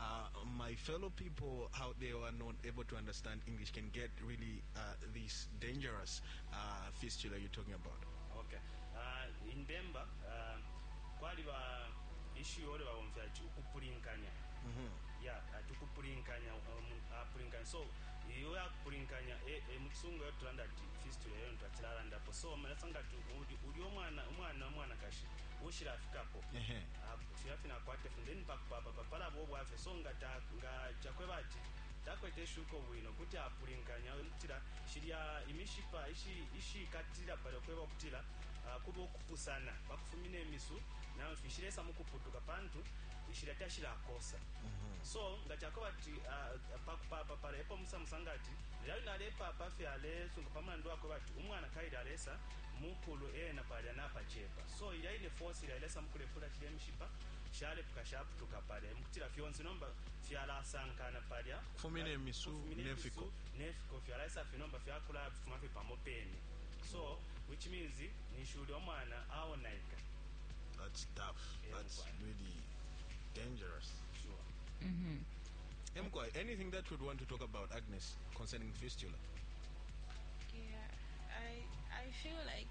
uh, my fellow people out there who are not able to understand English can get really uh, this dangerous uh, fistula you're talking about? Okay. Uh, in Bemba, uh, kwaliba issue ole bawomfya ati ukupulinkanya mm -hmm. ya yeah, ati ukupulinkanya um, apulinkanya uh, so iyo yakupulinkanya e, e, mu kisungu yo tulanda ati fistula yo ntwakiralandapo so malasa nga uli omwana omwana omwanakashi ushirafikapo Filya fine akwate funde nipakupapapa palaba ubwafya so nga ta nga cakweba ati takwete ishuko bwino kuti apulinkanya kutila shilya imishipa ishi ishikatilila palya kweba ukutila kuba ukupusana pakufumina imisu na mfi shilesa mukuputuka pantu shilya tashilakosa so nga cakweba ati pakupapa palya epo musa musanga ati lilya wine alepapa fye alesunga pamulandu wakweba ati umwana kaili alesa mukulu ena palya napacepa. So ilya ine force ilya ilesa mukulepula shilye mishipa shalepuka shaputuka palya emukutila fyonse nomba fyalasankana palya kufumine misu ne fiko ne fiko fyalaisa fye nomba fyakula fuma fye pamo pene so which means ninshi ulya omwana aonaika that's tough yeah, that's right. really dangerous sure mm -hmm. Emkwa, anything that you'd want to talk about Agnes concerning fistula yeah I I feel like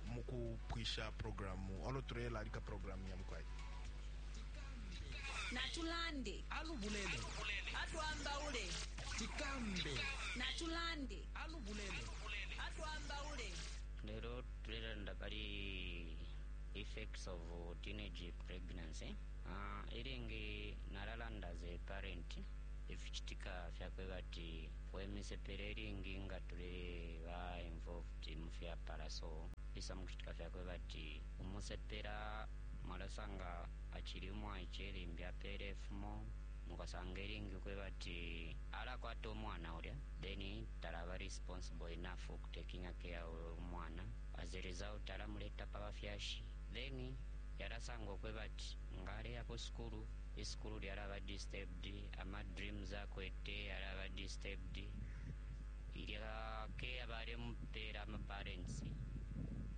mu kupwisha programu olo tulelalika programu ya mukwai natulande alubulele atwambaule tikambe natulande alubulele atwambaule lero tulelanda pali effects of teenage pregnancy uh, ilingi nalalanda ze parent ificitika fyakweba ati wemisepela ilingi nga tuli ba involved kuti mu fyapala so isa mu kucitika fya kweba ati umusepela mwalasanga acili umwaice limbi apeele ifumo mukasanga ilingi ukweba ati alakwata umwana ulya then talaba responsible enough ukutakinga care uyo umwana as a result alamuleta pa bafyashi then yalasanga ukweba ati nga aleya ku sukulu isukulu lyalaba disturbed ama dreams akwete yalaba disturbed ilya care balemupela ama parents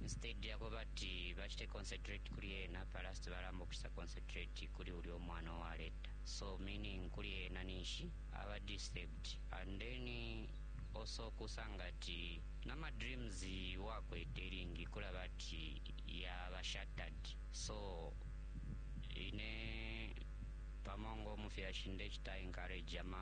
instead yakuba ati bachite concentrate kuli ena palasti balamba ukuchita concentrate kuli ulya omwana owaleta so meaning kuli ena ninshi aba disturbed and then also kusanga ati namadreams wakwete lingi kulaba ati yaba shattered so ine pamo ng'omufyashi ndechita encourage ama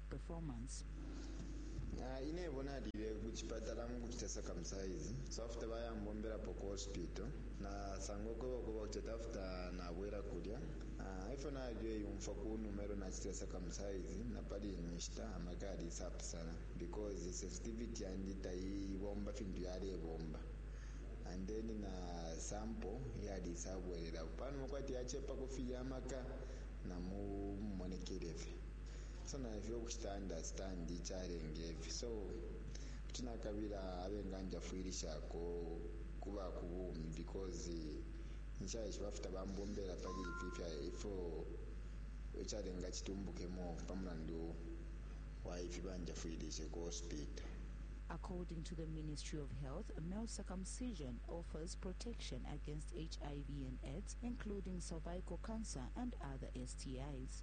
performance. Ayi nebo nalile ku chipatala muku chita circumcise so after baya mbombelapo ku hospital na sanga ukweba ukweba kuti ati after nabwela kulya ah efyo nalile yumfwa kunuma elo nachitile circumcise napali ino nshita amaka yalisa pusana because sensitivity yandi tayi bomba fintu yalebomba and then na sample yalisa bwelelapo panuma kwati yachepa kufilya amaka na mu mumonekele fye. so na ifyo ukucita understand icalenga ifi so kuti nakabila abenganjafwilishako kuba ku bumi because nshaishiba futa bambombela pali ifi ifya ifyo icalenga citumbukemo pa mulandu wa ifi banjafwilishe ku hospital. According to the Ministry of Health, male circumcision offers protection against HIV and AIDS, including cervical cancer and other STIs.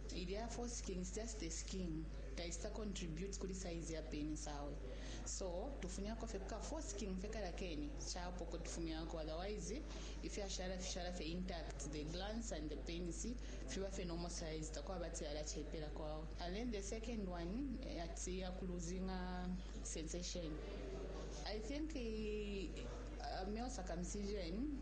ilya foreskin is just a skin taicita contribute kuli size ya penis awe so tufunyako fye kuka foreskin fye kalya kene capo ko tufumyako otherwise ifyashala fishala fye intact the glans and the penis fiba fye normal size takwaba ati yala cepelako awe and then the second one ati ya ku losing'a sensation i think uh, male circumcision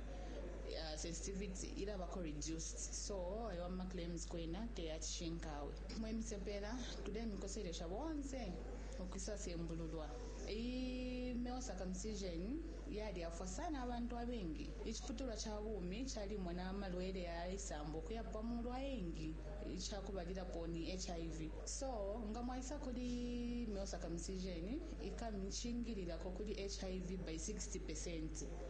uh, sensitivity ilabako reduced so ayo ama claims kwena teyacishinkawe mwe misepela tulemikoselesha bonse ukwisasembululwa iyi male circumcision yalyafwa sana abantu abengi iciputulwa ca bumi calimona amalwele yaisambo ukuya pamulu ayengi icakubalilapo ni hiv so nga mwaisa kuli male circumcision ikamicingililako kuli hiv by 60 percent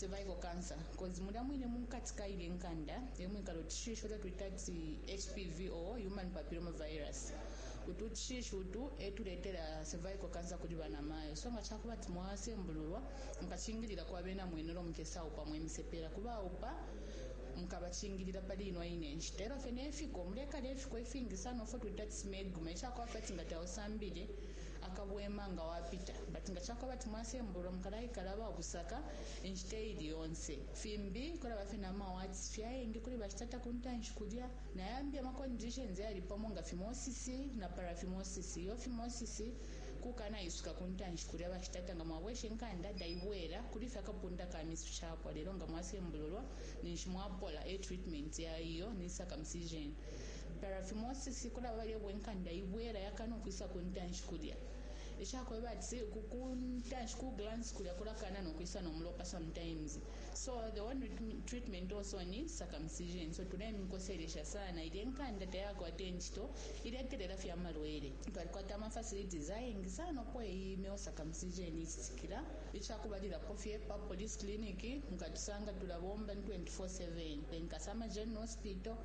cervical cancer cause mulya mwine munkati kaile nkanda emwikala utushishi uto twita ati HPV or human papilloma virus utu tushishi utu etuletela cervical cancer kuli bana mayo so nga chakuba ati mwasembululwa mukachingilila kwa bena mwenu lo mukesa upa mwe misepela kuba upa mukabachingilila pali ino ine nshita elo fene efiko mulekala efiko ifingi sana ofo twita ati smegma echakwafati nga tausambile akabwema nga wapita. But nga cakweba ati mwasembululwa mukalaikala ababusaka inshita iili yonse. Fimbi kulaba fye nama wards fye ayengi kuli bashitata kuntanshi kulya. Nayambi ama conditions ayali pamo nga phimosis na paraphimosis. Iyo phimosis kukana isuka kuntanshi kulya bashitata nga mwabwesha inkanda taibwela. Kuli fye akapunda ka misu capwa. Lelo nga mwasembululwa ninshi mwapola. E treatment ya iyo ni circumcision. paraphimosis kulaba balya ubwe nkanda ibwela yakana ukwisa ku ntanshi kulya ishakweba ati ku ntanshi ku glance kulya kulakana no kwisa no mulopa sometimes so the one treatment also ni circumcision so tulemikoselesha sana ilya nkanda tayakwata incito iletelela fya malwele twalikwata ama facilities ayengi sana uko iyi male circumcision icitikila icakubalilapo fye pa police clinic nkatusanga tulabomba 24/7 nkasama general hospital